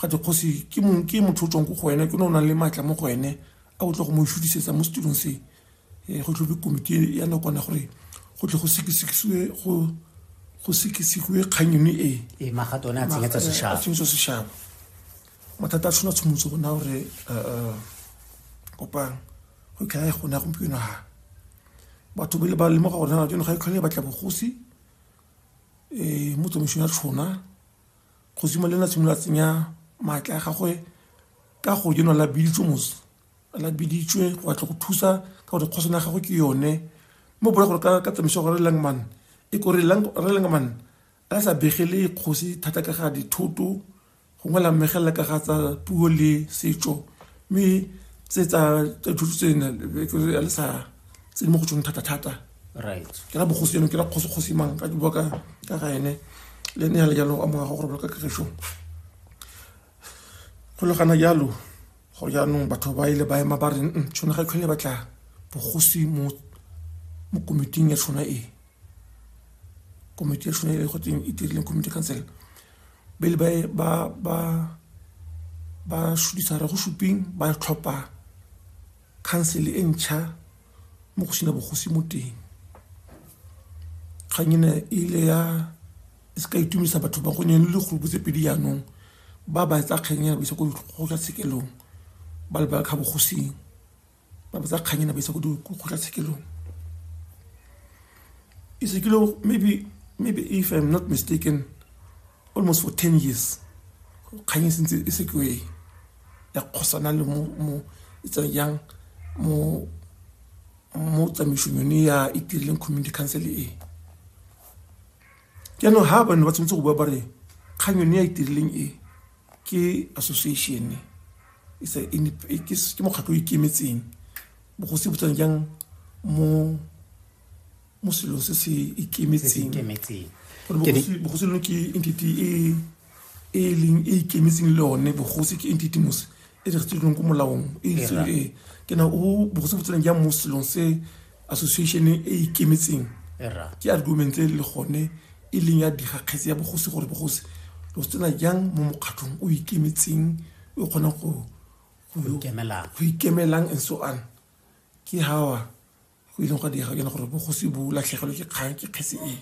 ga te kgosi ke mong ke motho o tswang ko go wena ke ne o nang le maatla mo go wene a o tla go mo šutisetsa mo setirong se um go tlhobe komiti ya nakwana gore go tle go sekesekisiwe go go sekisiwe kgang yone e ee magato one a tsenyetsa sešaba tsenyetsa sešaba mathata a tshwana tshomotse gona gore um kopang go tlhae gona gompieno ga batho ba le ba lemoga gore na jone ga e tlhole e batla bogosi um mo tsamaisong ya tshona Kgosi Molena a simolola tsenya maatla a gagwe ka go jenwa la biditswe mos la biditswe go batla go thusa ka gore kgosana ya gagwe ke yone mo bola gore ka tsamaiso gore langman e kore re langman a sa begele kgosi thata ka ga dithoto gongwe la mmegelela ka ga tsa puo le setso mme tse tsa thuto tse ya le sa tse di mo go tsone thata-thata ke ra bogosi eno ke ra kgosi-kgosi mang ka bua ka ka ga ene le ne ya le jalo a morago gore bola ka kagišo go le gana jalo go jaanong batho ba ile ba ema ba re tshone ga e tlhole batla bogosi mo komiting ya tshona e komiti yashu nayo yayikho itirile community council bele ba ba ba ba shudisa re go shuping ba tlhopha council e ntšha mo go sena bogosi mo teng kgang ena e ile ya e se ka itumisa batho ba gonne le dikgolopo tse pedi jaanong ba ba etsa kgang ena ba isa ko go ya tshekelong ba lebala kga bogosing ba botsa kgang ena ba isa ko dikgotlatshekelong ise ke lo maybe maybe if i'm not mistaken almost for ten years kgang e sentse e se kwe ya kgosana le mo mo e tsang yang mo mo tsamaisong yone ya e tirileng community council e jaanong ha bane ba tshwanetse go bua ba re kgang yone ya e tirileng e ke association it's a indep- e- ke s- ke mokgatlho o ikemetseng bogosi bo tsena jang mo mo selong se se se se ikemetseng ikemetseng Gore Ke ne- bogosi bogosi lone ke entity e e leng e ikemetseng le yone bogosi ke entity mose e registeredilweng ko molaong e itseng e ke na o bogose botseneng ja mo selong se association e ikemetseng era ke argument e le gone e leng ya digakgetse ya bogosi gore bogosi lo se tsena jang mo mokgatlhong o ikemetseng o kgonang go go go ikemelang. go ikemelang and so on ke hawa go ileng gwa diega jana gore bogosi bo latlhegelwe ke kgang ke kgetse e